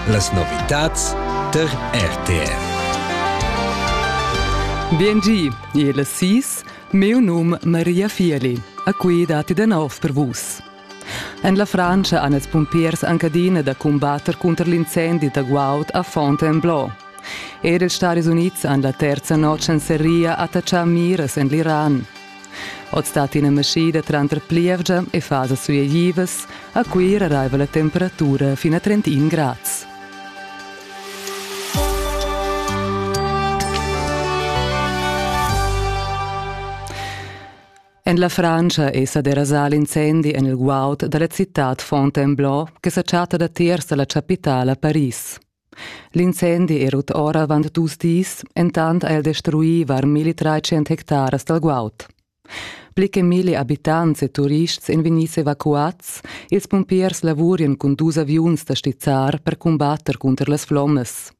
Las novitads tar RTR. Biengi, il sis, meu num Maria Fieli, a cui dati de nov per vus. En la Francia han els pumpiers anche adina da combatter contro l'incendi da Guaud a Fontainebleau. Er ils Stati Uniti han la terza notg en Seria attaccià miras en l'Iran. Oz dat ina maschida tranter plievgia e fasas suieivas. A Cuira raiva la temperatura fin a 31 grads. En la Frantscha è sa derasà l'incendi en il guaud da la citad Fontainebleau che sa chatta datiers da la chapitala Paris. L'incendi era tut ora avant dus dis, entant ha el destruì var 1300 hectaras dal guaud. Pli che milli abitants e turists èn vegnids evacuads, ils pumpiers lavurian cun dus aviuns da stizzar per cumbatter cunter las flommas.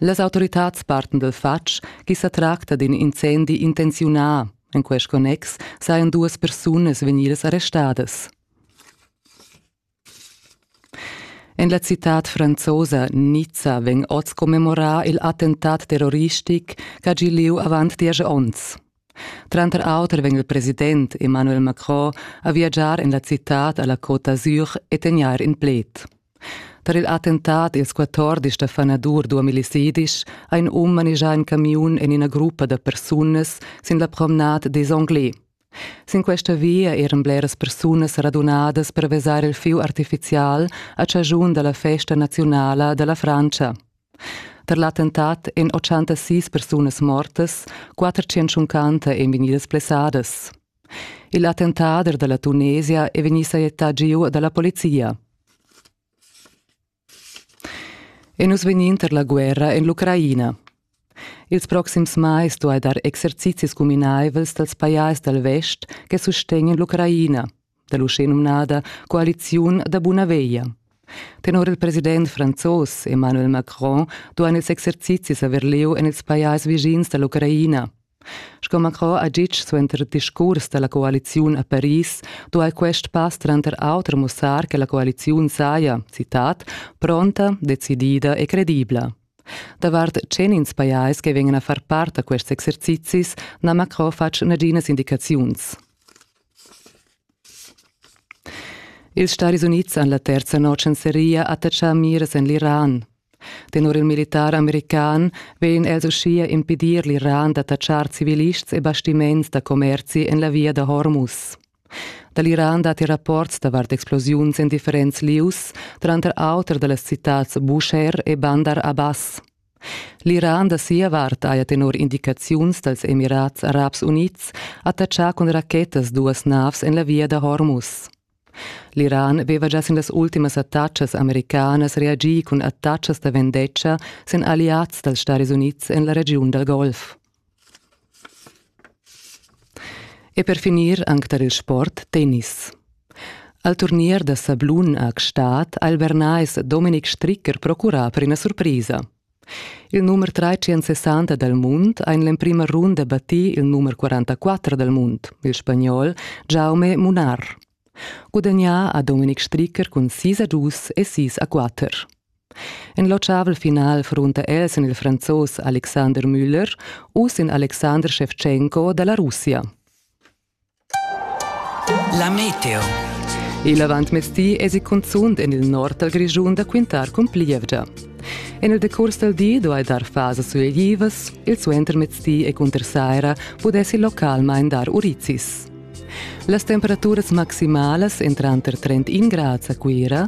Las autoritads parten dal fatg ch'i sa tracta d'in incendi intenziunà. En quest connex sajan duas persunas vegnidas arrestadas. En la citad franzosa Nizza vegn oz commemorà il attentat terroristic ch'ha gì lieu avant diesch onns. Tranter auter vegn il president Emmanuel Macron a viagiar en la citad a la Côte d'Azur e tegnair in pled. Tar il attentat ils 14 stafanadur duomilicidisch ha in um manigià in camiun en ina gruppa da persunas sin la promenade des Anglais. Sin questa via eran bleras persunas radunadas per vesar il fieu artifizial a chaschun da la festa naziunala da la Frantscha. Per l'attentat èn 86 persunas mortas, 450 èn vegnidas blessadas. Il attentader da la Tunesia è vegnì sajettà giu da la polizia. E nus vegnin tar la guerra en l'Ucraina. Ils proxims mais duai dar exercizis cuminaivels dals pajais dal vest che sustegnan l'Ucraina, da l'uschenumnada coaliziun da buna veglia. Tenor il president franzos Emmanuel Macron duain ils exercizis avair lieu en ils pajais vischins da l'Ucraina. Sco Macron ha ditg suenter discurs da la coaliziun a Paris, duai quest pass tranter auter mussar che la coaliziun saja, citat, pronta, decidida e credibla. Davart tschenins pajais che vegnan a far part da quests exercizis n'ha Macron fatg naginas indicaziuns. Ils Staris Unids han la terza notg en seria attatschà miras en l'Iran. Tenor il militar american vegn els uschia impedir l'Iran d'attachar civilists e bastiments da commerzi en la via da Hormuz. Da l'Iran datti rapports davart explosiuns en differents lieus, tranter auter da las citads Busher e Bandar Abbas. L'Iran da sia vart haja tenor indicaziuns dals Emirats Arabs Unids attachà cun rachettas duas navs en la via da Hormuz. L'Iran veva gia sin las ultimas attacas americanas reagì cun attacas da vendetta sin alliads dals Stadis Unids en la regiun dal Golf. E per finir anc tar il sport tennis. Al turnier da sablun a Gstaad ha il Bernais Dominik Stricker procurà per ina surpresa. Il numer 360 dal mund ha in l'emprima runda battì il numer 44 dal mund, il spagnol Jaume Munar. Gudagnà ha Dominik Stricker cun sis a dus e sis a quatter. En l'ochavel final frunta el sin il franzos Alexander Müller u sin Alexander Shevchenko da la Russia. La meteo. Il avantmezdi esi cunzunt en il nord dal Grischun da quintar cun plievgia. En il decurs dal di duai dar fasas suleglivas, il suentermezdi e cunter saira pudessi localmain dar urizis. Las temperaturas maximalas èn tranter 31 grads a Cuira,